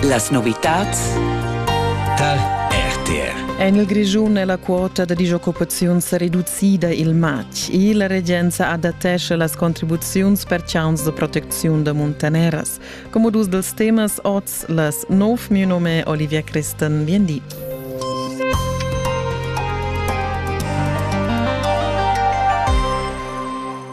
Las novitads tal RTR. En il Grischun è la quota da disoccupaziun sa reducida il matg e la regenza adattescha las contribuziuns per chauns de protecziun da muntaneras. Come dus dels temas oz las nov mio nome Olivia Christen vien di.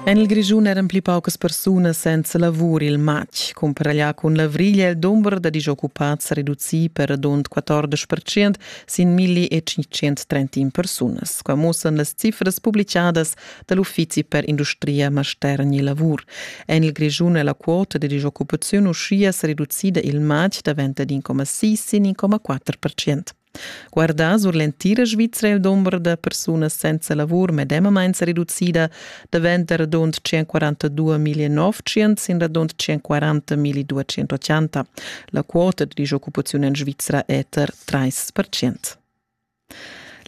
En il Grischun eran pli paucas persunas senza lavur il matg. Cumparaglià cun l'avrigl è il dumber da disoccupads reducì per radund 14 percent sin 1531 persunas. Qua muossan las cifras publicadas da l'Uffizi per industria, mastergn e lavur. En il Grischun è la quota da disoccupaziun uschia sa reducida il matg davent ad 1,6 sin 1,4 percent. Guardà sur l'entira Svizra il dumber da persunas senza lavur medemamain sa reducida daventa radund 142.900 sin radund 140.280. La quota da disoccupaziun en Svizra è tar 3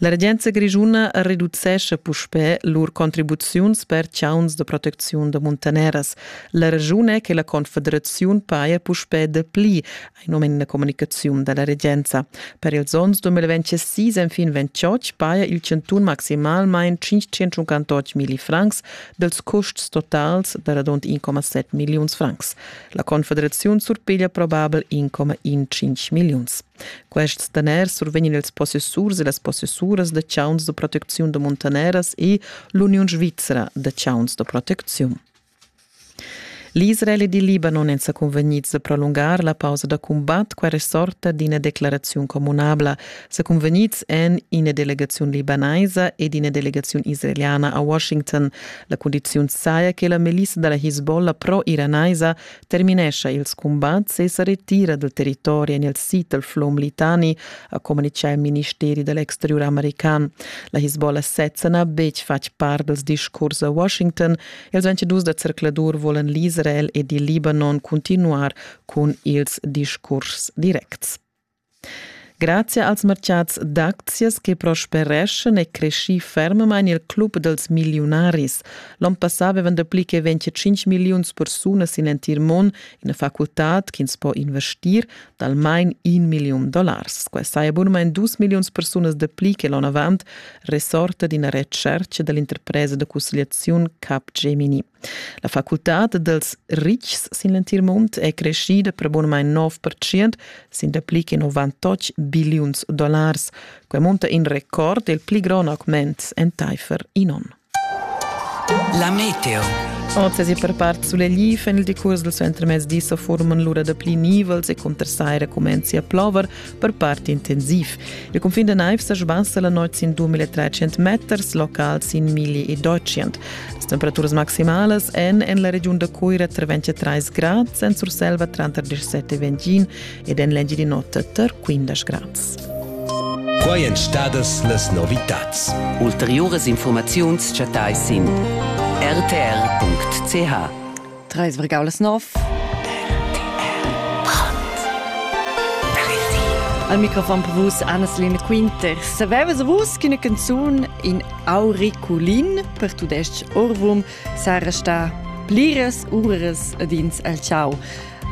La regenza grischuna reducescha puspè lur contribuziuns per chauns da protecziun da muntaneras. La raschun è che la confederaziun paja puspè dapli ein um in communicaziun dalla regenza. Per ils onns 2026 enfin 28 paia il chantun maximalmain 558 milli francs dels custs totals da radund 1,7 milliuns francs. La Confederaziun surpiglia probabel 1,15 milliuns. Quests daners survegnin ils possessurs e las possessuras da chauns de protecziun de muntaneras e l'Uniun Svizra de chauns de protecziun. L'Israel ed il Libanon èn sa cunvegnids da prolungar la pausa da cumbat quella sorta d'ina declaraziun communabla. Sa cunvegnids èn ina delegaziun libanaisa ed ina delegaziun israeliana a Washington. La cundiziun saja che la milissa da la Hezbollah pro-iranaisa terminescha ils cumbats e sa retira dal territori en il sid dal flum Litani, ha communitgà il ministeri da l'exteriur american. La Hezbollah sezza n'ha betg fatg part dals discurs a Washington Ils 22 da zercladur volan l'Israel ed il Libanon continuar cun ils discurs directs. Grazie als mercats d'aczias che prospereschen e cresci fermemain il club dels millionaris. L'on passà avevan dapli che 25 milliuns persunas in entir mon in facultad ch'ins po investir d'almain in milliun dollars. Quai saja bunamain dus milliuns persunas dapli che l'onavant resorta d'ina retschertga da l'interpresa da cussegliaziun Capgemini. La facultad dels ritgs sin l'entir mund è creschida per bunamain 9% sin dapli che 98 billiuns dollars. Quai munta in record il pli grond augment entaifer in onn. La meteo. Oz e per part suleglifen il decurs dal suentermezdi sa forman lura da pli nivels e cuntersaira comenzi a plover, per part intensiv. Il cunfin da naiv sa sbassa la notg sin 2300 meters, locals sin 1200. Las temperaturas maximalas èn en la regiun da Cuira tra 23 grads, en Surselva tranter 17 e 21 ed en l'Engiadin'Ota tar quindesch grads. Quai èn stadas las novitads. Ulteriuras informaziuns chattais sin rtr.ch. Trais vergaulas nov. Al microfon per vus Annasline Quinter. Savevas vus che una canzun in auriculin per tudestg orvum sarà sta pliras uras ad ins al ciao?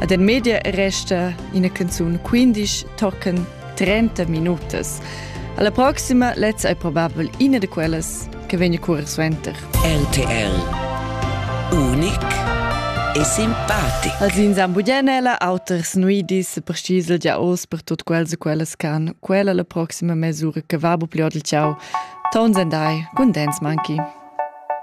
Ad en media resta ina canzun 15 tochen 30 minutas. Alla proxima lezza è probabel ina di quellas che vegna curer suenter. RTL Unic e simpatico. Als in Zambuglianella auters nuidis precisel già oz per tut quels e quellas can quella la proxima mesura che va bu pliod il ciao. Tons and I, con Dance Monkey.